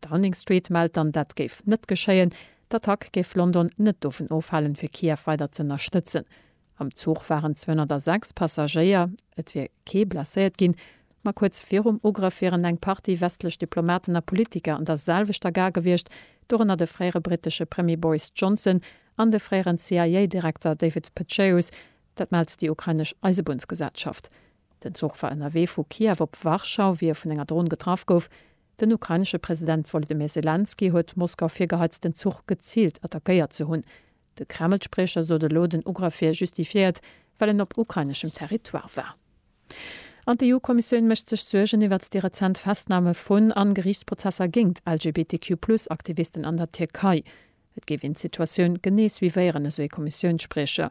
Downing Street mellt dann, dat géif net geschéien. D'Attack géif London net dovun ofhalen, fir Kiew weider z'ënnerstëtzen. Am Zuch waren 206 Passagéier. Et wier kee blesséiert ginn. Ma kuerz virum Ugrëff wieren eng Partie westlech Diplomaten a Politiker an der selwechter Gare gewiescht, dorënner de fréiere brittesche Premier Boris Johnson an de fréieren CIA-Direkter David Petraeus. Dat mellt déi ukrainesch Eisebunnsgesellschaft. Den Zuch war ënnerwee vu Kiew op Warschau, wéi e vun enger Dron getraff gouf. Den ukrainesche President Wolodymyr Selenskyj huet d'Moskau virgehait, den Zuch geziilt attackéiert ze hunn. De Kreml-Spriecher sot elo, den Ugrëff wier justifiéiert, well en op ukraineschem Territoire war. An d'EU-Kommissioun mécht sech Suergen iwwert déi rezent Festname vun an Geriichtsprozesser géingt LGBTQ-Plus-Aktivisten an der Tierkei. Et géif een d'Situatioun genee suivéieren, esou ee Kommissiounsspriecher.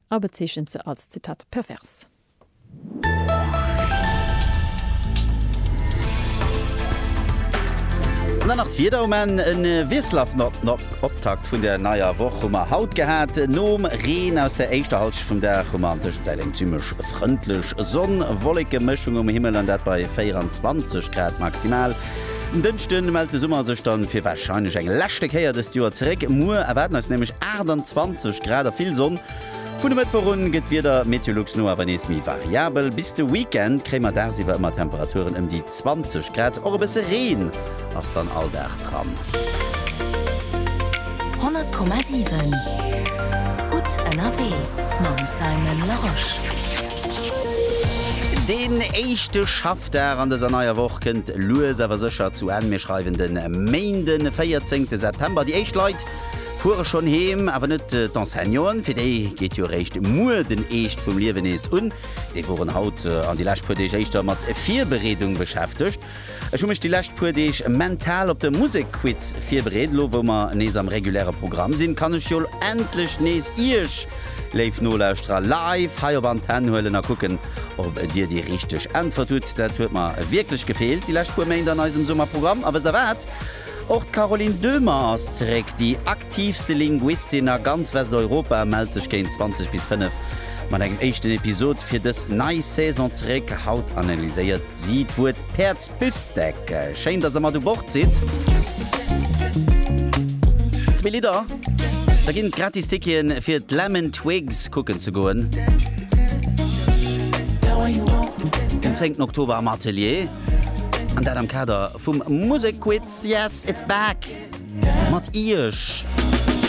A bezeechent se als Zitat pervers. An dann nach d'Wieder um Enn. E wiesselhaften Optakt vun der neier Woch hu mer haut gehat. Nom Reen aus der éischter Halschent vum Dag hu mer an Tëschenzäit eng zimmlech frëndlech Sonn-Wolleke-Mëschung um Himmel, an dat bei 24 Grad maximal. En Dënschde mellt de Summer sech dann fir warscheinlech eng leschte Kéier dëst Joer zeréck. Muer erwaarden eis nämlech 28 Grad a vill Sonn. Vun e Mëttwoch un gëtt d'Wieder Meteolux no awer nees méi variabel. Bis de Weekend kréie mer dagsiwwer ëmmer Temperaturen ëm déi 20 Grad. Och e bësse Reen ass dann all Dag dran. 100,7 gutt ënnerwee mam Simon Larosche. Deen éischte Schaff. Dag an dëser neier Woch kënnt lues awer sécher zu Enn. Mir schreiwen de Méinde 14 September. Déi éischt Leit fuere schonn heem, awer net d'Enseignanten, fir déi geet jo eréischt muer den Eescht vum Liewen nees un. Déi woren haut an déi lescht puer Deeg éischter mat Virbereedung beschäftegt. Ech hu mech déi lescht puer Deeg mental op de Musekquiz virbereet. Elo wou mer nees am reguläre Programm sinn, kann ech jo endlech nees Iech Léif Nolauschterer, live hei op Antenn huelen a kucken, ob Dir déi richteg Äntwert hutt. Dat huet mer wierklech gefeelt déi lescht puer Méint an eisem Summerprogramm. A wësst Der wat? Och d'Caroline Döhmer ass zeréck. Déi aktiivste Linguistin a ganz Westeuropa mellt sech géint 20 bis 5 mat engem éischten Episod fir dës nei Saison zeréck. Haut analyséiert si d'Wuert Päerdsbifsteak, schéin dass der mat u Bord sidd. Zwee Lidder, da ginn et gratis Ticketen fir d'Lemon Twigs kucken ze goen. Den 10 Oktober am Atelier, an dat am Kader vum Musekquiz Yes it's back mat Iech.